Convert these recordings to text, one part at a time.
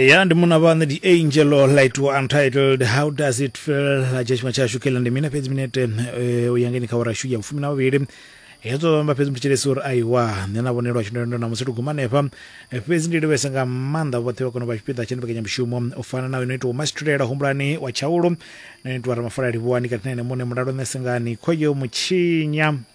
ya ndi muna vhane the angel or light were untitled how does it feel la dzhia tshifhinga tshashu kela ndi mina fhedzi minete eh, u ya ngeni kha ora shu ya vhufumi na vhuvhili hedzo vhamba fhedzi mutshitshilesi uri aiwa nṋe na vhonelwa tshindendo na musi tiguma hanefha Eh, fhedzi ndi livhese nga maanḓa vhoṱhe vha kona u vha tshipiḓa tsha mbekanyamushumo u fana na ino itiwa masitulela humbulani wa tshaulo na itiwa ramafala livhuwani kati na ene muṋe mulalo nṋe sengani khoyo mutshinya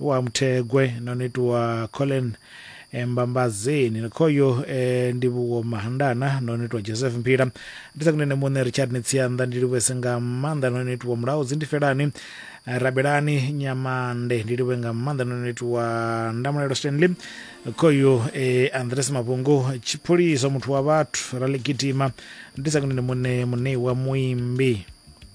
wa Muthegwe no ni itiwa Colin eh, Mbambazini ni khoyo eh, Ndivhuwo Mahandana no ni itiwa Joseph Mphila ndi sa kunene muṋe Richard ni Tsianda ndi livhuese nga maanḓa no ni itiwa Mulaho Dzindifelani eh, Rabelani Nyamande ndi livhuwe nga maanḓa no ni itiwa Ndamulelo Stanley khoyo eh, Andres Mavhungu Tshiphuliso muthu wa vhathu Ralegidima ndi sa kunene muṋe Muṋeiwa Muimbi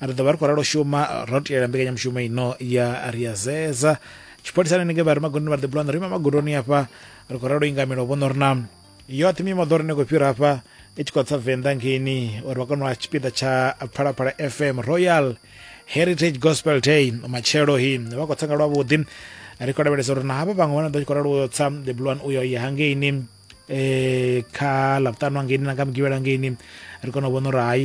ri ḓo vha ri khou ralo shuma ro tiyela mbekanyamushumo ino ya ri ya zeza tshipholisani ninge vha ri magondoni vha ri ḓibula na ri ima magondoni afha ri khou ralo ingamelo vhono ri na yoṱhe mimoḓoro ine khou fhira afha i tshi khou tsa venḓa ngeini uri vha kone u a tshipiḓa tsha phalaphala fm royal heritage gospel day matshelo hi vha khou tsa nga lwavhuḓi ri khou lavhelesa uri na havha vhaṅwe vha na ḓo tshi khou ralo uyo tsa the blue one uyo ya hangeini um kha ḽavhuṱanu hangeini na nga mugivhela hangeini ri kone u vhona uri hai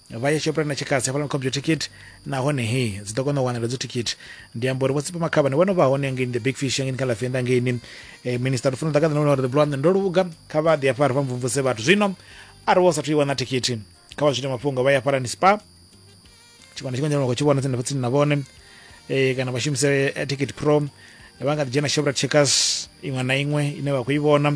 vha ya shoprite na tshikasi hafhaḽa ni khobyo thikhithi nahone he dzi ḓo kona u wanela dzo thikhithi ndi amba uri vho tsipa makhavhani vho no vha hone ngei the big fish ngei kha lafenda ngeini eh, minister lufuna ḓa ka ḓana uri ḓibulwa ndo luga kha vha ḓi afha ri vha mvumvuse vhathu zwino a ri wo sathu i wana thikhithi kha vha zwite mafhungo vha ya hafhalani spa tshikwana tshikwanjana vha khou tshi vhona tsini na vhone eh, kana vha shumise eh, ticket pro eh, vha nga ḓi dzhena shoprat checkers iṅwe na iṅwe ine vha khou i vhona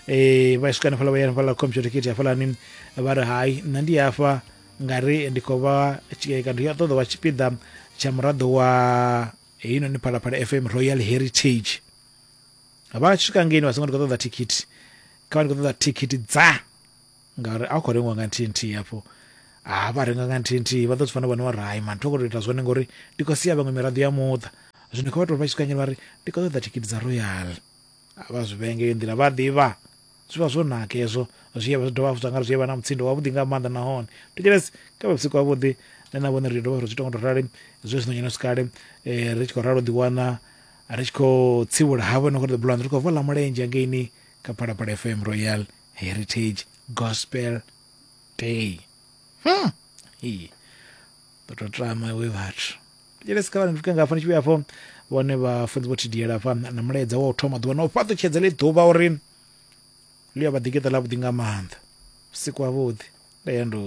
eh, vha swika hanefhala vha ya hanefhala computer ticket hafhalani vha ri hai nṋe ndi hafha nga ri ndi khou vha tshi- eh, kana ndi a ṱoḓa vha tshipiḓa tsha muraḓo wa heinoni phalaphala fm royal heritage vha tshi swika ngeini vha songo ndi khou ṱoḓa thikhithi kha vha ndi khou ṱoḓa thikhithi dza ngauri a khou rengiwa nga nthihi nthihi hafho ha vha renga nga nthihi nthihi vha ḓo zwi fanela vhone uri hai mani thi khou tou ita zwone ngori ndi khou sia vhaṅwe miraḓo ya muṱa zwino kha vha tou vha tshi kanyela vha ri ndi khou ṱoḓa thikhithi dza royal vha zwi vhenge yo nḓila vha ḓivha zwi vha zwo naka hezwo zwi ya vha zwi dovha hafhu zwa ngari zwi ya vha na mutsindo wavhuḓi nga maanḓa nahone thetshelesi kha vha vhusiku havhuḓi nṋe na vhone ri dovha ri zwi tonga tou rali zwe zwino nyeno sikale eh, ri tshi khou ralo ḓiwana ri tshi khou tsivhula havho no khou ḓo bulanda ri khou vola mulenzhe angeini kha phalaphala fm royal heritage gospel day hmm. Hii. ndo to tama we vhathu jelesi kha vhane ndifike nga hafha ni tshi vhuya hafho vhone vhafunzi vho thidiyela hafha na mulaedza wa u thoma ḓuvha na u fhaṱutshedza ḽi ḓuvha uri ḽi a vha ḓikeṱa ḽa vhuḓi nga maanḓa vhusiku ha vhuḓi nda ya ndo